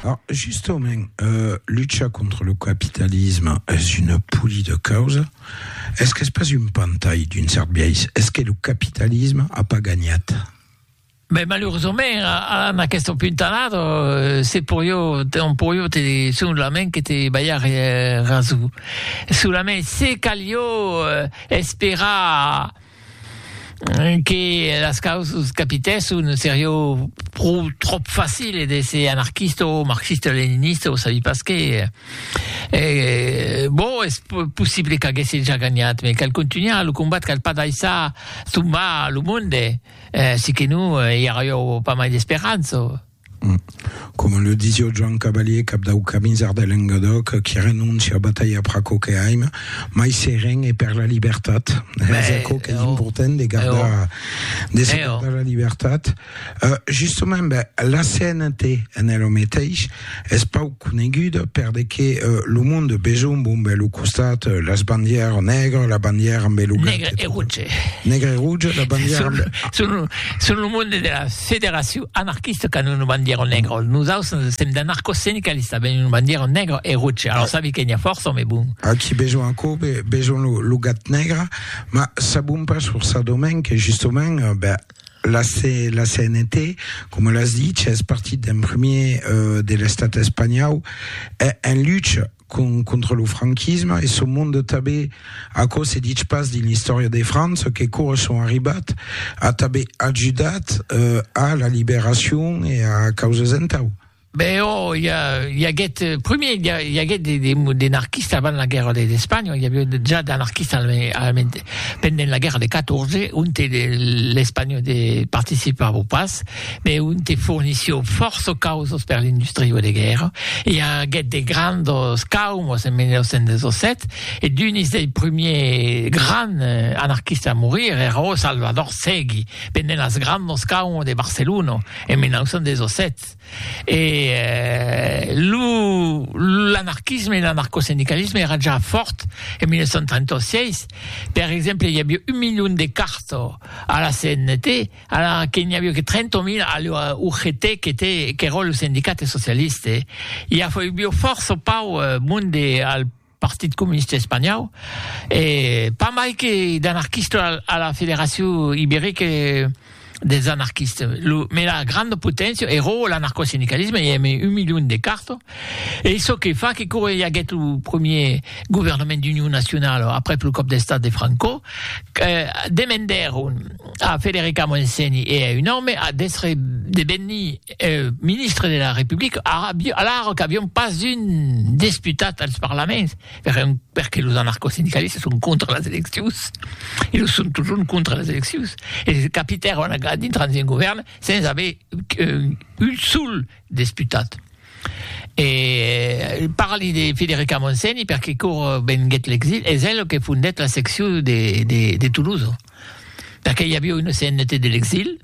Ah, justament, euh, lucha contra lo capitalisme es una poli de causa? Es qu'es pas un pantai d'un cèrt biais? Es que lo capitalisme a pas ganhat? Ben, malurosament, a, a aquesta puntalada, euh, se poió, te, on poió te dir solament que te balhar eh, raso. Solament se calió eh, esperar, que las causas capitèsson serió pro tròp facile d'èsser anarquista o marxista-leninista o sabi pas qué, e bon es possible qu'aguèsse ja ganhat me cal contunhar lo combat cal pas daissar tombar lo monde, si que non i arrió pas mai d'esperança. Coma le disio Joan Cavalier, cap dau Camisard de Lengadòc, qui renonci a batalhar per aquò que aim, mai seren e per la libertat. Es aquò qu'es important de gardar, de se gardar la libertat. Justament, la CNT en ela meteis es pauc. coneguda per de que lo monde besonh bon bè lo costat las bandièr nègre la bandièr amb e lo gat nègre e rouge nègre e rouge la bandièr amb son son lo monde de la federacion anarquista qu'an una bandièra nègra nos aus nos sèm d'anarco sindicalista ben una bandièra nègra e rouge alors sabi que n'ia fòrça ome bon a qui besonh aquò besonh lo gat nègre ma sabon pas sur sa domèn que justament bè La CNT, coma l'as dich, es partit d'en premier de l'estat espanhau en lucha contra lo franquisme e son monde tanben. Aquò se dich pas dins l'istòria de França que cors son arribat a tanben ajudat a la liberacion e a causas entau. Ben oh, i, a, i aguèt, eh, primier, i, a, i aguèt de, de, de narquista avant la guerra d'Espanha, i aviá ja d'anarquista alament pendent la guerra de 14, ont l'Espanha de participava pas, me ont fornissió fòrça causos per l'industria de guerra, i aguèt de grandos caumos en 1917, e d'unis dei primiers grands eh, anarquista a morir èra Salvador Segui, pendent las grandos caumos de Barcelona en 1917. Estat e lo l'anarquisme e l'anarcosindicalisme èra ja fòrt en 1936, per exemple i aviá un milion de carto a la CNT ala que n'i aviá que 30.000 a la UGT qu'était qu'èra lo sindicat socialiste, i aviá fòrça pauc monde al Partit Comunista Espanhau, e pas mai que d'anarquista a la Federacion Iberica dels Anarquistes, lo mela granda poténcia, ero l'anarcosindicalisme, i ème un milion de carto, e çò que fa que quora i aguèt lo premier governament d'union nacionala aprèp lo còp d'estat de Franco, demendèron a Federica Montseny e a un òme d'èstre de venir ministre de la Republica, alara qu'avion pas un desputat als parlaments, perque los anarcosindicalistas son contra las eleccions, e los son totjorn contra las eleccions, e capitèron a dintrar dins un govèrn sens aver un sol desputat. E parli de Federica Montseny perque quò venguèt l'exil, es el que fondèt la seccion de Toulouse, perque i aviá una CNT de l'exil,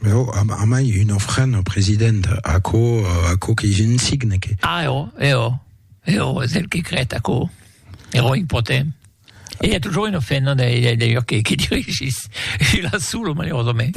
Mais oh, a, a mai un ofrant au president, aquò, aquò que je ne signe que... Ah, eo, eo, eo, és el que crèt aquò, ero impotent. E hi a toujours un ofrant, non, d'ailleurs, que, que dirigís, il a solo, malheureusament.